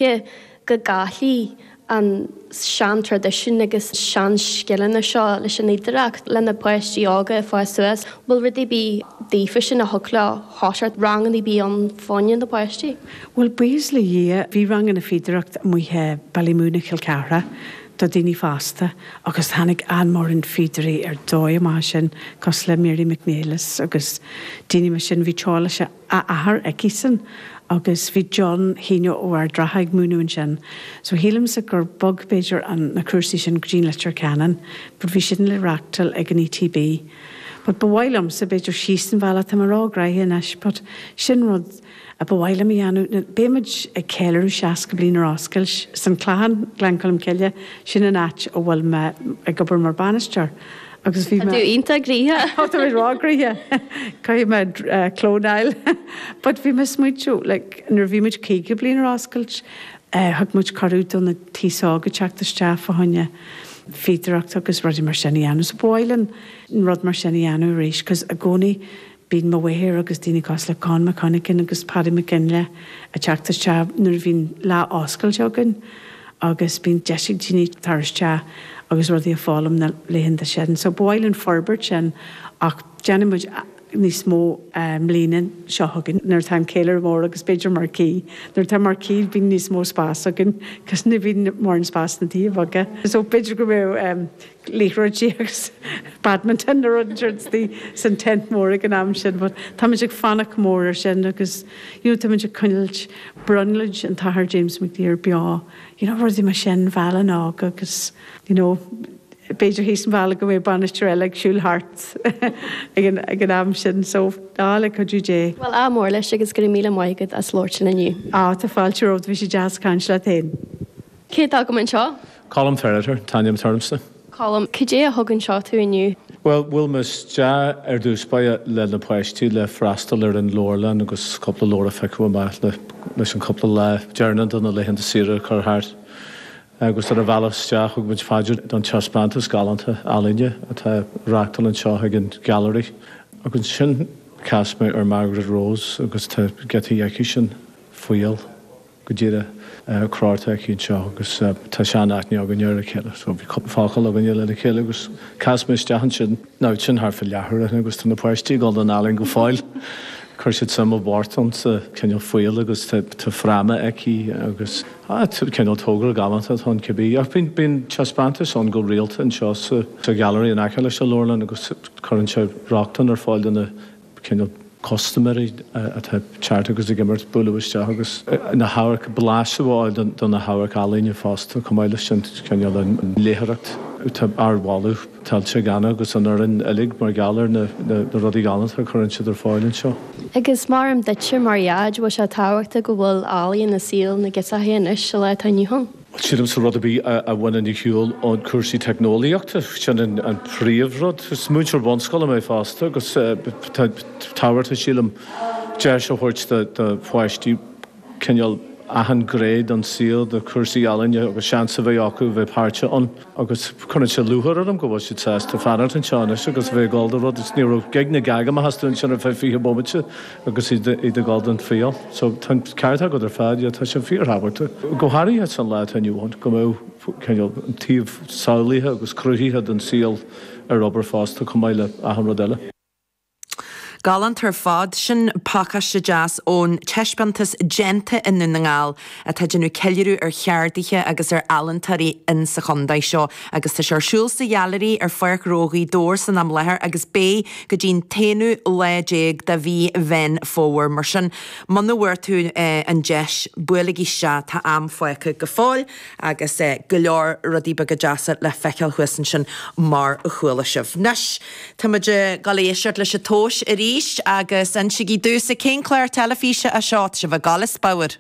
Tuige go gcaillfí an seantraidisiún agus seanscileanna seo leis an oidhreacht, le na páistí óga ag fás suas? An bhfuil rud ar bith daofa sin a thug leo Hotchart, ranganna ar bith ann fá choinne na páistí? Bhuel, buíochas le Dhia, bhí ranganna fíodóireacht amuigh i Ballymoon i Chill Chartha do daoine fásta agus tháinig an-mhóran fíodóirí ar dóigh amach sin, cosúil le Mary McNelis agus daoine mar sin. Bhí tráth leis an. a athair aici-san agus bhí John Heena ó Ard an Rátha ag múineadh ansin so shílimse gur bog b'fhéidir an na cúrsaí sin go dtí an Leitir Ceanainn but bhí siad le reáchtáil ag an ETB but ba mhaith liomsa b'fhéidir síos an bhealach tá mé róghraitheach anois but sin rud a ba mhaith liom a dhéanamh ná beidh muid ag ceiliúradh seasca bliain ar oscailt san Clachán Gleann Cholm Cille sin an áit a bhfuil mé ag obair mar bainisteoir Agus bhí Tá mé. tú iontach graitheach! Tá tú róghraitheach! Caithfidh mé clónáil. But bhí mé ag smaointiú, like, nuair a bhí muid caoga bliain ar oscailt, thug muid cuireadh do na t-aos óga teacht isteach fá choinne fíodóireacht agus rudaí mar sin a dhéanamh. So ba mhaith linn rud mar sin a dhéanamh arís 'cause i gcónaí Bíonn mo mháthair agus daoine cosúil le Con McConachan agus Paddy McGinley ag teacht isteach nuair a bhíonn lá oscailte againn agus bíonn deis ag daoine tar isteach agus rudaí a foghlaim na laethanta sin. So ba mhaith linn forbairt sin ach déanfaidh muid níos mó i mbliana seo chugainn nuair atá an ceiliúradh mór agus b'fhéidir marquee. Nuair atá marquee bíonn níos mó spás againn cos ní bhíonn mórán spás sna tithe beaga. So b'fhéidir go mbeidh. liathróid déag badminton nó rud inteacht is bhí san tent mór ag an am sin but táimid ag fanacht go mór ar sin agus you know táimid ag coinnilt brionglóid an t-athair James McDyer beo you know rudaí mar sin Bhaile'n Átha agus you know b'fhéidir thíos an bhealaigh go mbeidh bainisteoir eile ag siúl thart ag an ag an am sin so á le cuidiú Dé. Bhuel ádh mór leis agus go raibh míle maith agat as labhairt linn inniu. Á tá fáilte romhat bhí sé deas caint leat fhéin. Cé atá agam anseo? Colm Ferriter an t-ainm atá ormsa. Colm Cad é a thug anseo tú inniu? Bhuel, bhuail mé isteach ar dtús báire le na páistí le freastal ar an leabharlann agus cúpla leabhar a phiocadh amach leis an cúpla lá deireanach de na laethanta saoire a chur thart. Agus ar an bhealach isteach thug muid fá dear don taispeántas galánta ealaíne atá á reáchtáil anseo ag an Gallery. Agus ansin chas mé ar Margaret Rose agus tá giotaí aici sin faoi fheill. go díreach crochta aici anseo agus tá sean aithne againn ar a chéile so bhí cúpla focal againn le na chéile agus chas mé isteach ansin now sin thart fá leathuair ó shin agus tá na páistí ag dul don ealaín go fóill chuir siad suim i bpáirt iontu cineál fuáil agus tá fráma aici agus ah cineál togra galánta atá ann cibé ach bíonn bíonn taispeántais ann go rialta anseo sa gallery in aice leis an leabharlann agus cuireann sé rochtain ar fáil do na cineál custaiméirí atá ag teacht agus ag imeacht, bualadh isteach agus na hamharc, blaiseadh a fháil de na hamhairc ealaíne fosta. Chomh maith leis sin, cineál an léitheoireacht, tá ardmholadh tuillte ag Anna agus an fhoireann uilig mar gheall ar na rudaí galánta a chuireann siad ar fáil anseo. Agus maram duitse mar Dhaid, bhfuil sé tábhachtach go bhfuil ealaíon i saol na girseachaí anois sa lá atá inniu ann? Sílimse rud ar bith a bhaineann ar shiúl ón chúrsaí teicneolaíochta, sin an príomhrud. Is múinteoir bunscoile mé fosta agus tá tábhachtach, sílim, deis a thabhairt do pháistí cineál achan gné den saol, do chúrsaí ealaíne agus seans a bheith acu a bheith páirteach ann. agus cuireann sé lúcháir orm go bhfuil siad sásta fanacht anseo anois agus a bheith ag dul do rud. Ní raibh gíog ná gág amach astu ansin ar feadh fiche bomaite agus iad ag dul don triail. So tá an ceart agat ar fad, yeah, tá sé fíorthábhachtach, go háirithe sa lá atá inniu ann, go mbeadh cineál an taobh samhlaithe agus cruthaithe den saol ar obair fosta chomh maith le achan rud eile. Galánta ar fad. Sin pacáiste deas ón taispeántas 'Déanta i nDún na nGall' atá ag déanamh ceiliúradh ar cheardaithe agus ar ealaíntóirí in sa chontae seo agus tá sé ar siúl sa Ghailearaí ar Pháirc Ghnó Ghaoth Dobhair san am láthair agus beidh go dtí'n t-aonú lá déag de mhí Mheán Fómhair mar sin muna bhfuair tú an deis buailigí isteach tá am fágtha go fóill. agus go leor rudaí beaga deasa le feiceáil thuas ansin mar a chuala sibh. Anois, táimid ag dul a dh'éisteacht leis an Tomhas arís agus insígí domhsa cén clár teilifíse é seo. Tá sibh ag dul, is fabhar.